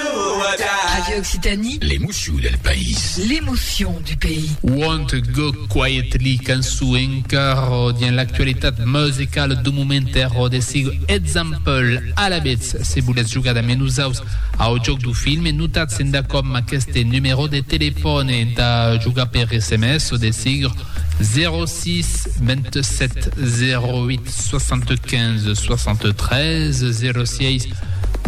Radio Occitanie. L'emoció del país. L'emoció du pays. Want to Go Quietly, cançó encara dins l'actualitat musicala du moment e rodesigo Example. Alavetz, se volètz jogar damb nosaus au jòc du filme, notatz endacòm amb aqueste numerò de telefòne entà jogar per sms o de sigur 06 27 08 75 73 06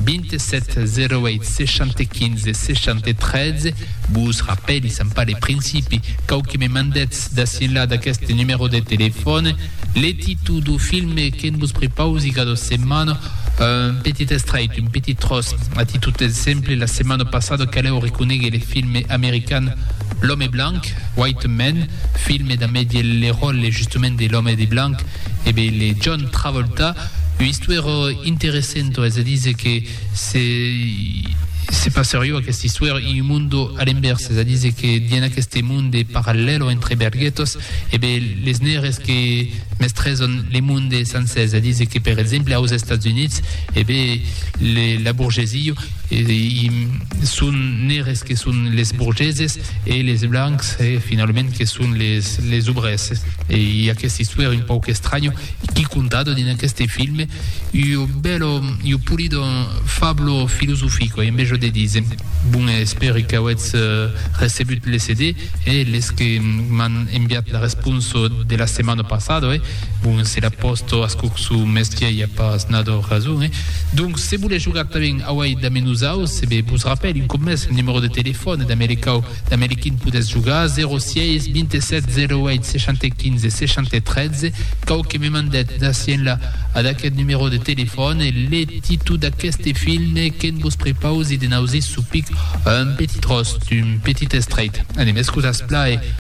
27 08 60 15 60 13 Vos rapèli Sant Pale Principi cau que me mandètz d'ací enlà d'aqueste numèro de telefòn le títol do filme que'n vos prepausi cada setmana un petit estrait, un petit tros a títol d'exemple la setmana passada calèu reconegue le filme american L'homme blanc, White Man, filme damb Eddie Lerol e justament de l'homme de blanc E be le John Travolta, ua istuèra interessento es a díser que se se passer jo aquesta istuèra in un mundo a l'envèrs, es a díser que dien aqueste monde parallèlo entre berghetos e be les nègres que mestrèson le monde sancèr, es a díser que per exemple aus Estats Units e be la burgesia, i son nègres que son les burgeses, e les blancs e finalament que son les les obrèrs e i aquesta istuèra un pauc estranya qui contada dins aqueste film io bello io pulido fablo filosofico e enveja de dise bon espèri qu'auètz euh, recebut le CD e les que m'an enviat la responsa de la setmana passada e Bon, se la pòsto ascurçu mès qu'i aia pas nadò rason, eh? Donc, se volètz jogar tanben auei damb nosaus, se be vos rapèl un còp mès lo numèro de telefòn damb le cau damb le quin podètz jogar, 06 27 08 60 15 60 13, cau que me mandèt d'ací enlà ad aqueth numèro de telefòn le titu d'aqueste film que'n vos prepausi de n'ausir supic un petit tròç d'un petit estreit. Anem, escusatz-pla, e.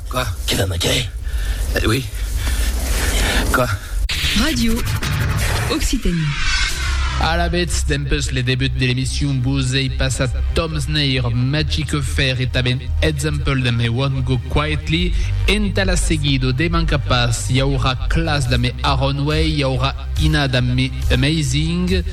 Quoi? Quel homme à quai? Eh oui. Quoi? Radio Occitanie. Alavetz, dempes le debut de l'emission vos ei passat Tom Sneir, Magic Affair e tanben Example damb I Won't Go Quietly. Entà la seguida, de mancar pas, i aurà Klass damb Aronway, i aurà Ina damb mi amazing.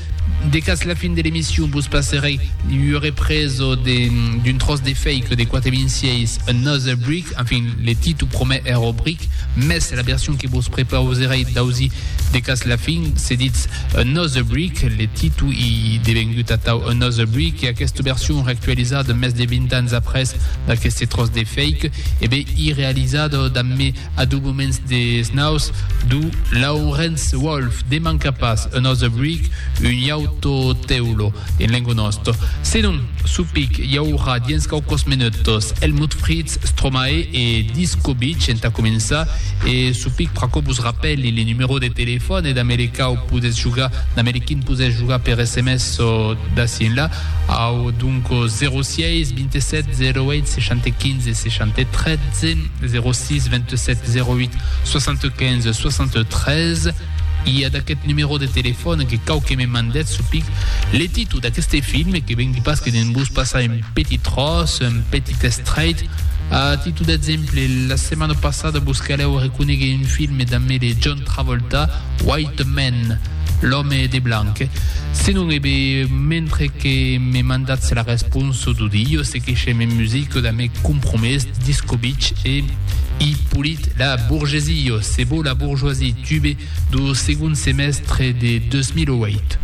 De cas la fin de l'emission vos passerei ua represo d'un tròç de fake de quate vint sièis Another Brick, enfin le titu promèr èra Brick, mès la version que vos prepauserei d'ausir de cas la fin se ditz Another Brick, le titu i devengut atau Another Brick e aquesta version reactualizada mès de vint ans après d'aqueste tròç de fake e ben i realizada damb mi A dos moments des naus d'u Laurence Wolf demanca pas un ose bric, un iauto teulo en lengo nosto. Senon, supic i aurà diens quauquos menutos Helmut Fritz, Stromae e Disco Beach entà començar e supic pr'aquò vos rapèli le numero de telefòn e damb le quau podètz jogar, damb le quin podètz jogar per sms o d'ací enlà, au, donc, 06 27 08 60 15 63. 06 27 08 75 73 i a d'aquest numèro de telefòn que cau que me mandèt su pic le títol d'aqueste film que vengui pas que de'n vos passar un petit tros, un petit estrait. A títol d'exemple, la setmana passada vos calèu reconeguer un film damb de John Travolta, White Man, l'òme de blanc. Senon, ebe, mentre que me mandatz la responsa d'audios, Que se me musico da me compromés discobich e i polit la borgesio se bo la bourgeoisie tube do segon semèstre de 2008.